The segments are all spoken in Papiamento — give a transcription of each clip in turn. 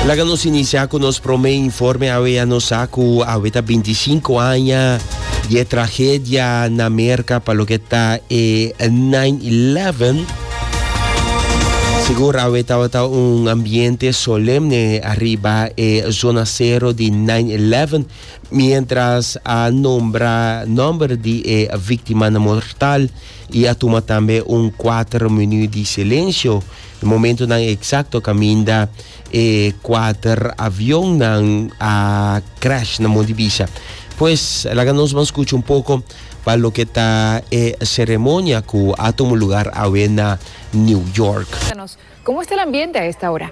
Laga nos inicia cu nos prome informe awe a nos sa cu awe ta 25 aña di e tragedia na Merca pa lo que ta e 9-11. Sigur awe tabata un ambiente solemne arriba e zona cero di 9-11 mientras a nombra nomber di e víctima mortal y a tuma tambe un 4 minuut di silencio E momentonan eksakto kaminda e kuater avionnan a crash na Montibisha. Pues laga nos ban skucha un poko pa loke ta e seremonia ku a tuma lugar awe na New York. Komo esta el ambiente a esta ora?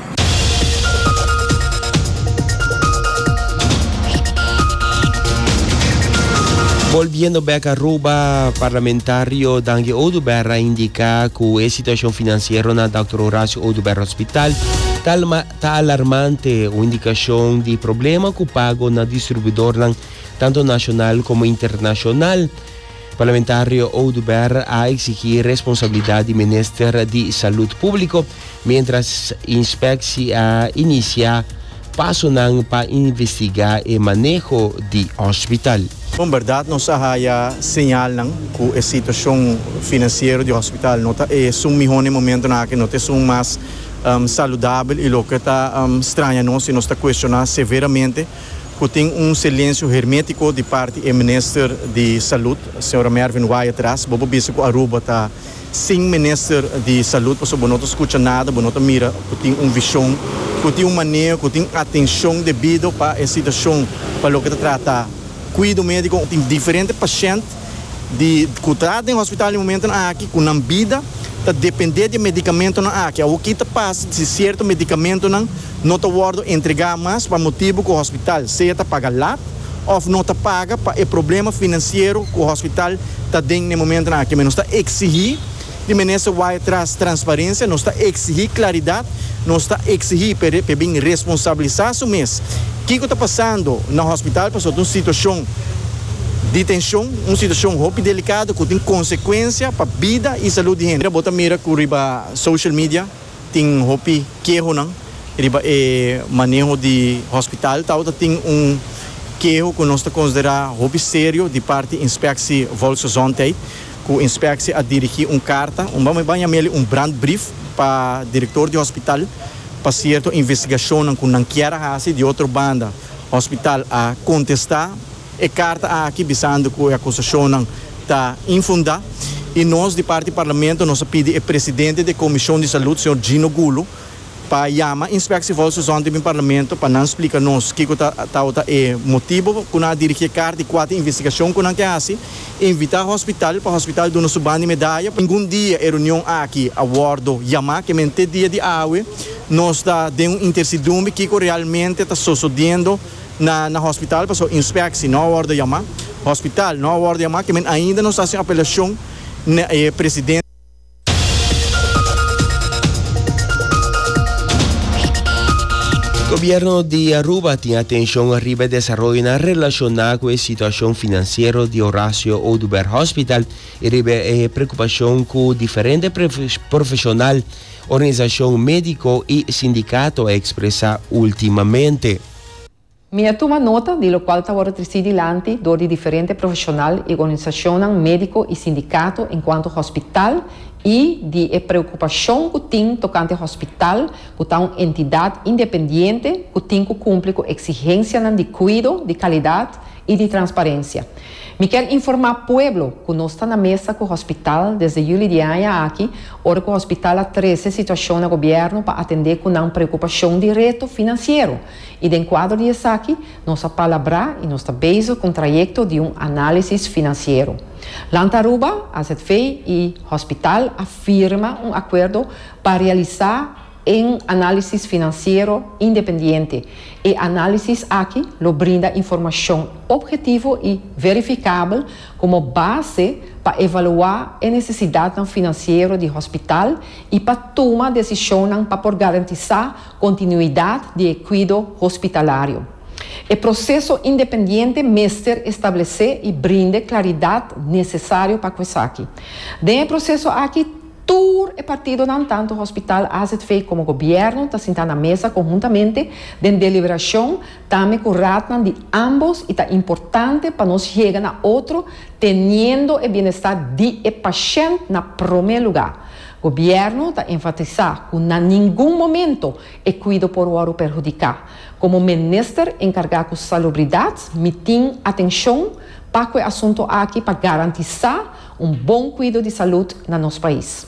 Bolbiendo bek Aruba, parlamentario Dangi Oduber a indica cu e situacion financiero na Dr. Horacio Oduber Hospital ta, alma, ta alarmante, un indicacion di problema cu pago na distribuidornan tanto nacional como internacional. Parlamentario Oduber a exigi responsabilidad di Minister di Salud Publico, mientras Inspecci a inicia pasonan pa investiga e maneho di hospital. Bon berdad nos a haya señalnan cu e situacion financiero di hospital no ta esun miho na e momentonan aki, no ta esun mas saludabel y loke ta straña nos y nos ta cuestiona severamente cu tin un silencio hermetico di parti e Minister di Salud, Sra. Mervin Wyatt Ras. Bo por bisa cu Aruba ta sin Minister di Salud pasobra bo no ta scucha nada, bo no ta mira cu tin un vision, cu tin un maneho, cu tin atencion debido pa e situacion pa loke ta trata cuido medico. Tin diferente pashent di ku trata den hospital di momentonan aki ku nan bida ta dependé di e medikamentonan aki. Awor ki ta pasa si sierto medikamentonan no ta wòrdu entregá mas pa motibu ku hospital sea ta paga lat òf no ta paga pa e problema finansiero ku hospital ta den na e momentonan aki. Nos ta eksigí. Di Minister Waya tras transparencia, nos ta exigi claridad, nos ta exigi p'e p'e bin responsabiliza su mes kico ta pasando na hospital pasobra ta un situacion di tension, un situacion hopi delicado cu tin consecuencia pa bida y salud di hende. Bo ta mira cu riba social media tin hopi kehonan riba e maneho di hospital. Tabata tin un keho cu nos ta considera hopi serio di parti Inspectie Volksgezondheid. Cu inspectie a dirigi un carta, un bamey baña meli un brandbrief pa director di hospital pa cierto investigacionnan cu nan kier a haci. Di otro banda hospital a contesta e carta aki bisando cu e acusacionnan ta infunda y nos di parti Parlamento nos a pidi e presidente di e Comision di Salud, señor Gino Gulu, pa yama Inspectie Volks Gezondheid den Parlamento pa nan splika nos kico ta tawata e motibo cu nan a dirigi e carta y cua ta e investigacion cu nan ke haci. Invita hospital pa hospital duna su banda y medaya. Ningun dia e reunion aki a wordo yama, ke men te dia di awe nos ta den un intercidumbi kico realmente ta sosodiendo na na hospital pasobra Inspectie no a wordo yama, hospital no a wordo yama ke men ainda nos ta haci un apelacion na e Presidente. Gobierno di Aruba tin atencion arriba e desaroyonan relaciona cu e situacion financiero di Horacio Oduber Hospital y riba e preocupacion cu diferente profesional, organisacion medico y sindicato a expresa ultimamente. Mi a tuma nota di lokual ta wòrdu trisí dilanti dor di diferente profeshonal i organisashonnan médiko i sindikato enkuanto hospital i di e preokupashon ku tin tokante hospital ku ta un entidat independiente ku tin ku kumpli ku eksigensianan di kuido, di kalidat i di transparensia. Mi ker informá pueblo ku nos ta na mesa ku hospital desde juli di e aña aki ora ku hospital a trese situashon na gobièrnu pa atendé ku nan preokupashon di reto finansiero. I den kuadro di esaki nos a palabrá i nos ta bezig ku un trayekto di un análisis finansiero. Land Aruba, azv i hospital a firma un akuerdo pa realisá un análisis finansiero independiente. E análisis aki lo brinda informashon opgetivo i verifikabel komo base pa evaluá e nesesidatnan finansiero di hospital i pa tuma desishonnan pa por garantisá Continuidad di e cuido hospitalario. E proceso independiente mester establece y brinde claridad necesario pa cu esaki. Den e proceso aki tur e partidonan tanto hospital azv como gobierno ta sinta na mesa conhuntamente den deliberacion tambe cu raadnan di ambos y ta importante pa nos yega na otro teniendo e bienestar di e pashent na prome lugar. Gobierno ta enfatisa cu na ningun momento e cuido por wòrdu perhudica. Como Minister encarga cu Salubridad mi tin atencion pa cu e asunto aki pa garantisa un bon cuido di salud na nos pais.